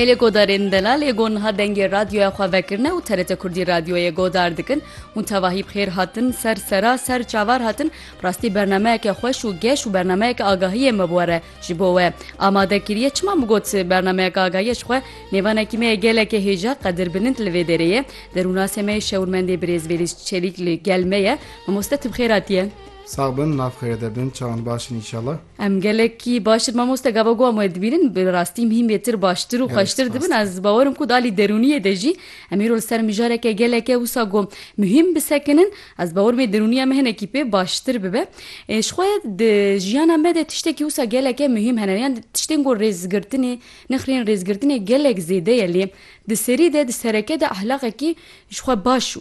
Mêlê Godarên Delalê got niha dengê radyoya xwe vekirine û TRT Kurdî radyoyê godar dikin û tevahî bi xêr hatin ser sera ser çavar hatin bi rastî bernameyeke xweş û geş û bernameyeke agahiyê me bi we re ji bo we amade kiriye çima min got bernameyeke agahiyê ji xwe nêvanekî me ye gelekê hêja qedir bilind li vê derê ye derûnasê me yê şewirmendê birêz Vêlîs Çelîk li gel me ye mamoste tu bi xêr hatiye. Sax bin, nav xêrê de bin, çawan baş in înşallah. Em gelekî baştir mamoste gava ku em wê dibînin bi rastî mîhîn bêtir baştir û xweştir dibin ez bawerim ku dalî derûniyê de jî em îro li ser mijareke gelek e wisa ku mîhîn bisekinin ez bawerim ê derûniya me hinekî pê baştir bibe ê ji xwe di jiyana me de tiştekî wisa geleke mîhîn hene yan tiştên ku rêzgirtinê nixirîn rêzgirtinê gelek zêde ye lê di serî de di sereke de ehlaqekî Ji xwe baş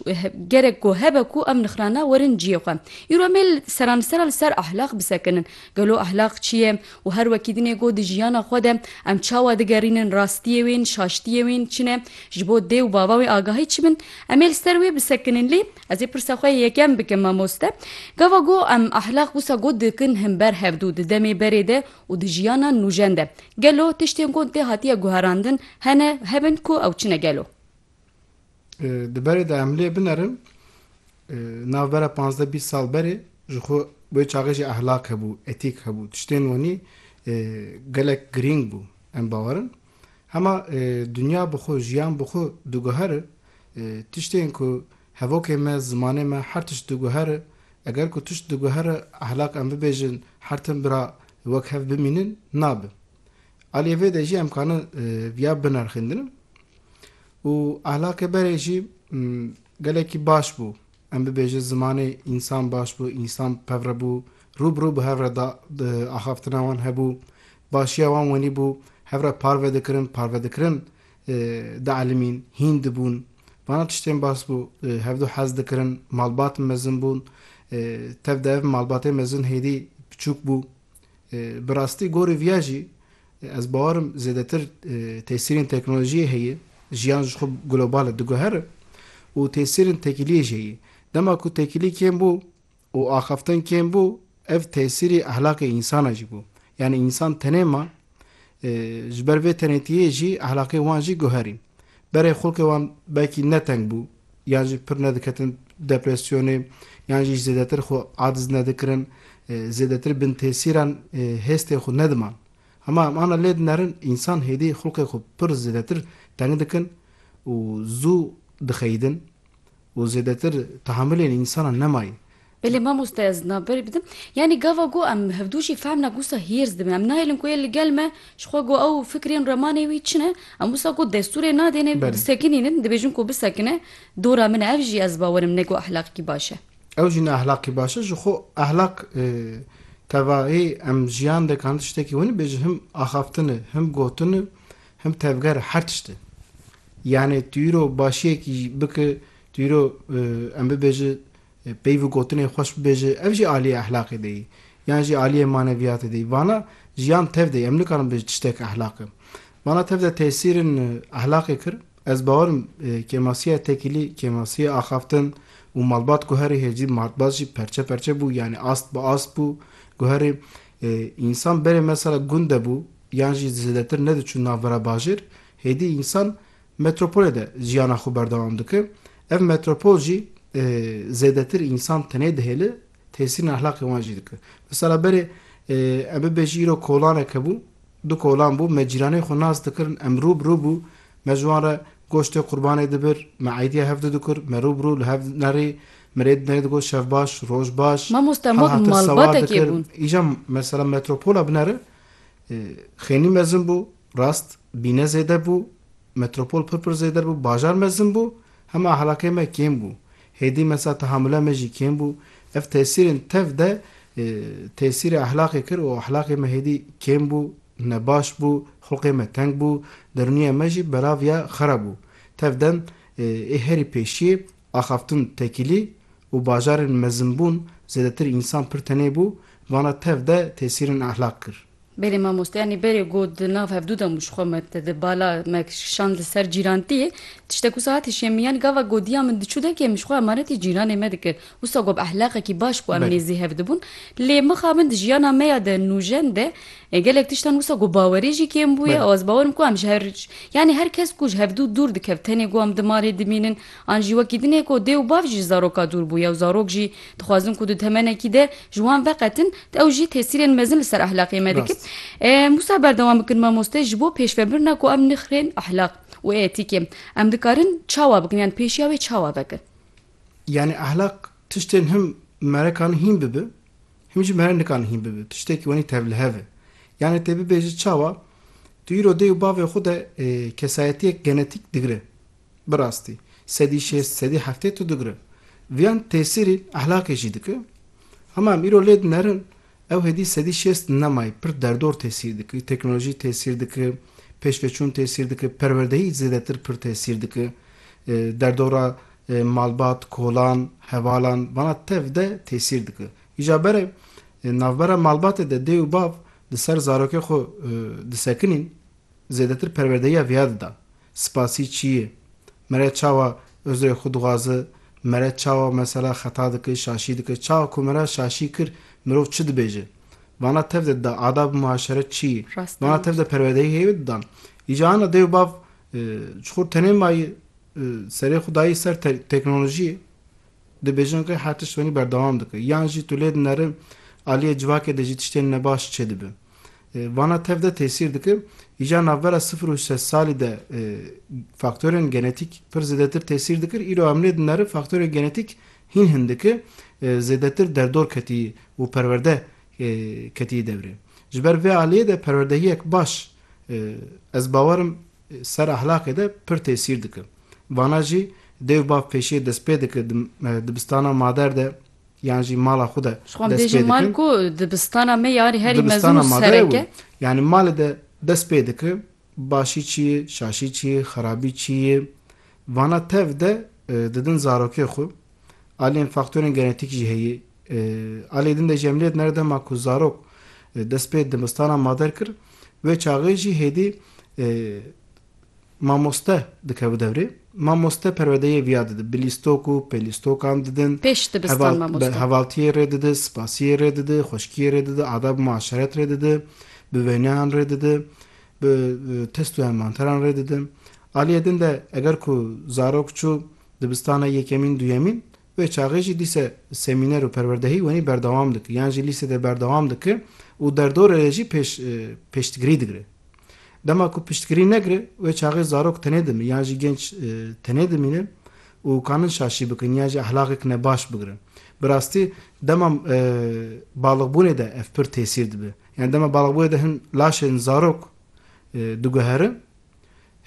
gerek ku hebe ku em nixirane werin ciyê xwe. Îro em ê seranisera li ser ehlaq bisekinin. Gelo ehlaq çi ye û her wekî din ê got di jiyana xwe de em çawa digerînin rastiyê wên, şaştiyê wên çi ne, ji bo dê û bava wê agahî çi bin? Em ê li ser wê bisekinin. Lê ez ê pirsa xwe yê yekem bikim mamoste. Gava ku em ehlaq wisa got dikin hin ber hevdû di demê berê de û di jiyana nûjen de. Gelo tiştên got dê hatiye guherandin hene hebin ku ew çi ne gelo? Di berê de em lê binerin navbera panzdeh bîst sal berê ji xwe wê çaxê jî ehlak hebû, etîk hebû, tiştên wanî gelek girîng bû. Em bawerin hema dinya bi xwe, jiyan bi xwe diguhere tiştên ku hevokê me, zimanê me her tişt diguhere. Eger ku tişt diguhere ehlak em bibêjin her tim bira wek hev bimînin nabe. Aliyê vê de jî em karin viya binirxîndin û ahlakê berê jî gelekî baş bû. Em bibêjin zimanê însan baş bû, însan pevre bû, rû bi rû bi hev re da axaftina wan hebû, başiya wan wenî bû, hev re parve dikirin, parve dikirin dielimîn, hîn dibûn. Vana tiştên baş bû, hevdu hez dikirin, malbat mezin bûn. Tev de ev malbatê mezin hêdî piçûk bû. Bi rastî gorî viya jî ez bawar im zêdetir tesîrên teknolojiyê heye, jiyan ji xwe global e diguhere û tesîrên tekîliyê jî heye. Dema ku tekîlî kêm bû û axaftin kêm bû ev tesîrê ehlakê însan a jî bû. Yanî însan tenê ma Ji ber vê tenêtiyê jî ehlaqê wan jî guherîn. Berê xulkê wan belkî ne teng bû yan jî pir nediketin depresyonê yan jî zêdetir xwe aciz nedikirin, zêdetir bin tesîran hêstê xwe nediman. Hema em ana lê dinerin însan hêdî xulkê xwe pir zêdetir teng dikin û zû dixeyidin. û zêdetir tehamilên însanan nemayî. Belê mamoste ez na berî bidim. Yanî gava ku em hevdu jî fehm na ku wisa hîrs dibin. Em nahêlin ku yê li gel me ji xwe ku ew fikrên remanê wî çi ne. Em wisa ku destûrê nadêne ku disekinînin, dibêjin ku bisekine dora min e. Ev jî ez bawerim ne ku ehlaqî baş e. Ew jî ne ehlaqî baş e. Ji xwe ehlaq tevahî em jiyan de kanî tiştekî winî bêjin him axaftin e, him gotin e, Him tevger her tişt e. Yanê tu îro başiyekî jî biki, tu îro em bibêji peyv û gotinên xweş bibêji ev jî aliyê ehlaqê de yî. Yan jî aliyê maneviyatê de yî. Vana jiyan tev de yî. Em nikarin bibêjin tiştek ehlaq e. Vana tev de tesîrên ehlaqê kir. Ez bawer im kêmasiya tekîlî, kêmasiya axaftin û malbat guherî heye jî malbat jî perçe perçe bû yanê ast bi ast bû. Guherî însan berê mesela gund de bû, yan jî zêdetir nediçûn navbera bajêr, hêdî însan metropolê de jiyana xwe berdewam dike. Ev metropol jî zêdetir însan tenê dihêle, tesîrên ehlaqê wan jî dike. Misala berê em bibêjî îro kolanek hebû, du kolan bû, me cîranên xwe nas dikirin, em rû bi rû bû, me ji wan re goştê qurbanê dibir, me eydîya hev didikir, me rû bi rû li hev nerî, mirê di nerî digot şev baş, roj baş, Mamoste me malbatekê bûn. Îja mesela metropola binere Xênî mezin bû, rast, bîne zêde bû, metropol pir pir zêder bû, bajar mezin bû, hema ehlakê me kêm bû. Hêdî mesa tehamule me jî kêm bû. Ev tesîrên tev de tesîrê ehlakê kir û ehlakê me hêdî kêm bû, nebaş bû, xulqê me teng bû, derûniya me jî belav ya xera bû. Tev dem ê herî pêşiyê axaftin tekîlî û bajarên mezinbûn zêdetir însan pir tenê bû, vana tev de tesîrên ehlaq kir. Belê mamoste yanî berê got di nav hevdû de mû ji xwe me di bala me kişand li ser cîrantiyê. Tişte ku saetê şêm yanî gava godiya min diçû derkê min ji xwe emanetê cîranê me dikir. Wisa got bi ehlaqekî baş ku em nêzî hev dibûn. Lê mixa min di jiyana me ya de nûjen de gelek tiştan wisa got bawerê jî kêm bûye û ez bawer im ku em ji her yanî her kes ku ji hevdû dûr dikevt tenê ku em di malê dimînin, An jî wekî din e ku dê û bav jî ji zaroka dûr bûye û zarok jî dixwazin ku di temenekî de ji wan veqetin, ew jî tesîrên mezin li ser ehlaqê me dikin. Em wisa berdewam bikin mamoste ji bo pêşvebirina ku em nixirên ehlaq û etîkê em dikarin çawa bikin yan pêşiya wê çawa vekin? Yanî ehlaq tiştên him me re karin hîn bibe him jî me re nikarin hîn bibe. Tiştekî wenî tevlihev e. Yanî tê bibêjin çawa tu îro dê û bavê xwe de kesayetiyek genetîk digire. Bi rastî sedî şêst, sedî heftê tu digre. Viyan tesîrî ehlaqê jî dike. Hema em îro lê dinerin, ew hêdî sedî şêst nemayê pir derdor tesîr dike. Teknolojî tesîr dike, pêşveçûn tesîr dike, perwerdeyî zêdetir pir tesîr dike. Derdora malbat, kolan, hevalan vana tev de tesîr dike. Îja bere navbera malbatê de dê û bav di ser zarokê xwe disekinîn. Zêdetir perwerdeya viya dida. Spasî çi yê? Mere çawa uzrê xwe dixwazi? Mere çawa mesela xeta dike, şaşî dike? Çawa ku mere şaşî kir, mirov çi dibêje? Vana tev de dida adab-ı muaşeret çi yê? Vana tev de perwerdeyî hêvî didan. Îca ana dê û bav ji xwe tenê mayî serê xwe dayî ser teknolojiyê, dibêjin rê her tişt wenî berdewam dike. Yan jî tu lê dineri aliyê civakê de jî tiştên nebaş çêdibe. Vana tev de tesîr dike. Îcar navbera sifir û şeş salî de faktorên genetîk pir zêdetir tesîr dikir. Îro em nê dineri faktorên genetîk hîn hin dike zêdetir derdor ketiyî û perwerde ketiyî devrê. Ji ber vê aliyê de perwerdehiyek baş ez bawer im ser ahlaqê de pir tesîr dike. Vana jî dêw bav pêşiyê destpê dike dibistana mader de. Yan jî mala xwe de destpê dikin. Ji xwe em bêjin mal ku dibistana me yarî herî mezin û serek e. Yanî malê de dest pê dikin. Başî çi ye, şaşî çi ye, xerabî çi ye. Vana tev de didin zarokê xwe. Aliyên faktorên genetîk jî heye. Aliyê din de jî em lê dinere dema ku zarok dest pê dibistana mader kir, wê çaxê jî hêdî Mamoste dike bi devrê. Mamoste perwedeyê viya didin. Bi lîstok û pêlîstokan didin. Pêş dibistan mamoste. Hevaltiyê rê didi, spasiyê rê didi, xweşkiyê rê didi, adab-û muaşeret rê didi, bi wêneyan rê didi, bi test û envanteran rê didi. Aliyê din de eger ku zarok çû dibistana yekemîn, duyemîn, wê çaxê jî dîse semîner û perwerdehî wenî berdewam diki yan jî lîsê de berdewam diki û derdorê rê jî pêş pêştgirî digire. Dema ku piştgirî negire, wê çaxê zarok tenê dimîn yan jî genç tenê dimînin û kanin şaşî bikin yan jî ehlaqek ne baş bigirin. Bi rastî dema balixbûnê de ev pir tesîr dibe. Yan dema balixbûnê de hin laşên zarok diguherin,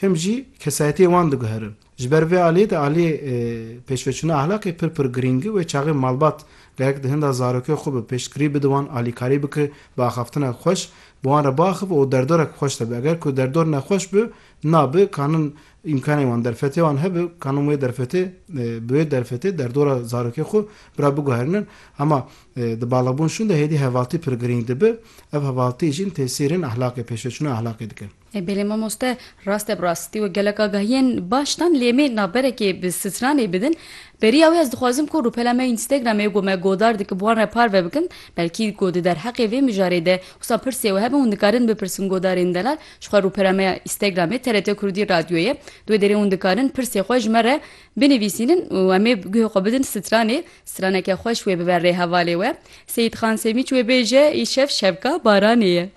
him jî kesayetiyê wan diguherin. Ji ber vê aliyê de aliyê pêşveçûna ahlaqê pir pir girîng e. Wê çaxê malbat gerek di hinda zarokê xwe be pêştgirî bide wan, alîkarî bike, bi axaftinek xweş bi wan re biaxive û derdorek xweş de be. Eger ku derdor nexweş be, nabe kanin îmkanên wan derfetê wan hebe kanin wê derfetê bi wê derfetê derdora zarokê xwe bi re biguherînin. Hema di baliqbûn şûn de hêdî hevaltî pir girîng dibe. Ev hevaltî jîn tesîrên ahlaqê pêşveçûna ahlaqê dike. Ê belê mamoste, rast e bi rast ti wê gelek agahiyên baş dan lê em ê navberekê bi stranê bidin. Beriya wê ez dixwazim ku rûpela me Instagramê ku me godar dikin bi wan re parve bikin. Belkî ku di derheqê vê mijarê de wisa pirsê we hebe hûn dikarin bipirsin godarên delal ji xwe rûpela me ya Instagramê TRT Kurdî Radyoyê. Di wê derê hûn dikarin pirsê xwe ji me re binivîsînin û em ê guhê xwe bidin stranê. Straneke xweş wê bibe rê hevalê we. Seyîd Xan Semîç wê bêje, Îşev şevka baranê ye.